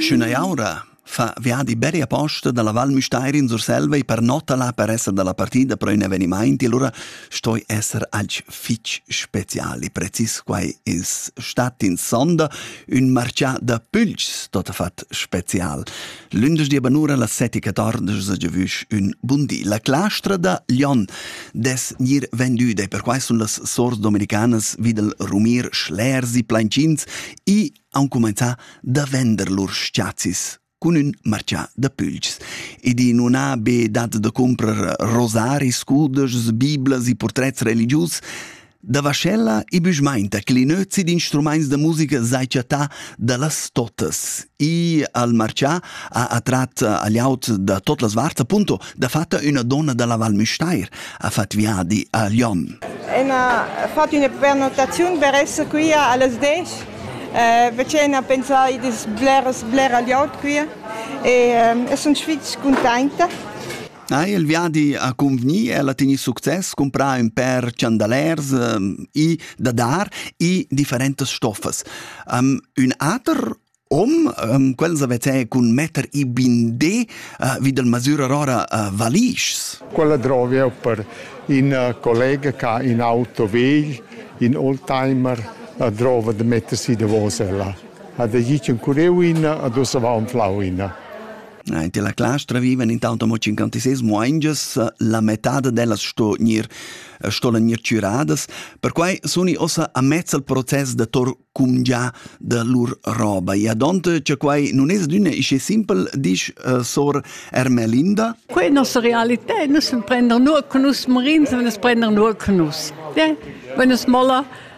Sch'üna jaura fa viadi beri aposta dalla Val Müstair in Surselva e pernotala per esser dalla partida pro ün evenimaint, allura stoi esser alch fich speciali. Precis quai es stat in sonda ün marchà da pülchs tot fat special. Lündeschdi banura la setica tardas a giavüsch ün bun di. La clastra da Lyon des gnir vendüda e perquai sun las sors dominicanas vi dal rumir schlers e plainchins e han cumainzà da vender lur s-chazis cun ün marchà da pülchs. Ed i non ha be dat da comprar rosari, scudas, biblas e portrets religius, Da vaschella e büschmainta che l'inözi d'instrumaints da musica s'ha chattà da las totas. I al marchà ha attrat a l'aut da tot las varts appunto dafatta üna donna da la Val Müstair ha fat viadi a Lyon. E ha fatto una prenotazione per essere qui alle 10 eh, vicina a pensare di sblera sblera gli out qui e eh, sono sfizio contenta Ha il viadi accumpgnì el a tegnir success, cumprà ün pèr chandalers, i da dar i differentas stoffas. Um, ün ater om, um, quels avete cun metter i bindé uh, vi del masürer ora uh, valischs. Quella drovi eu per in uh, collega che ha in auto vegl, in oldtimer, la drova de mettersi davos ella. Ha da gir un cureu in, a dus va un flau in. Int la clastra vivan intanto mo 56 muaingias, la metà dellas sto gnir stolen gnir chüradas, perquai suni ossa a mezz al process da tor cumgià da lur roba. E adont cha quai nun es d'üna isce simpel, disch uh, sor Ermelinda. Quai è nostra realità, nus prendern nur con nus morins, wenn es prendern nur con nus. Ja? Wenn es molla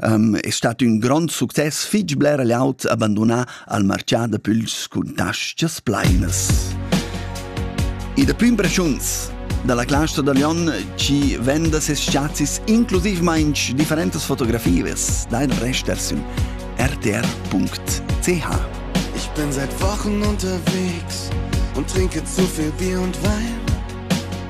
um, è stato un grande succes fitg bler laut abandonà al marcià da puls cun tascas plainas. E da prima impressiuns dalla claustra da Lyon ci venda ses scazis inclusivmain differentas fotografies dein Rest rtr.ch. Ich bin seit Wochen unterwegs und trinke zu viel Bier und Wein.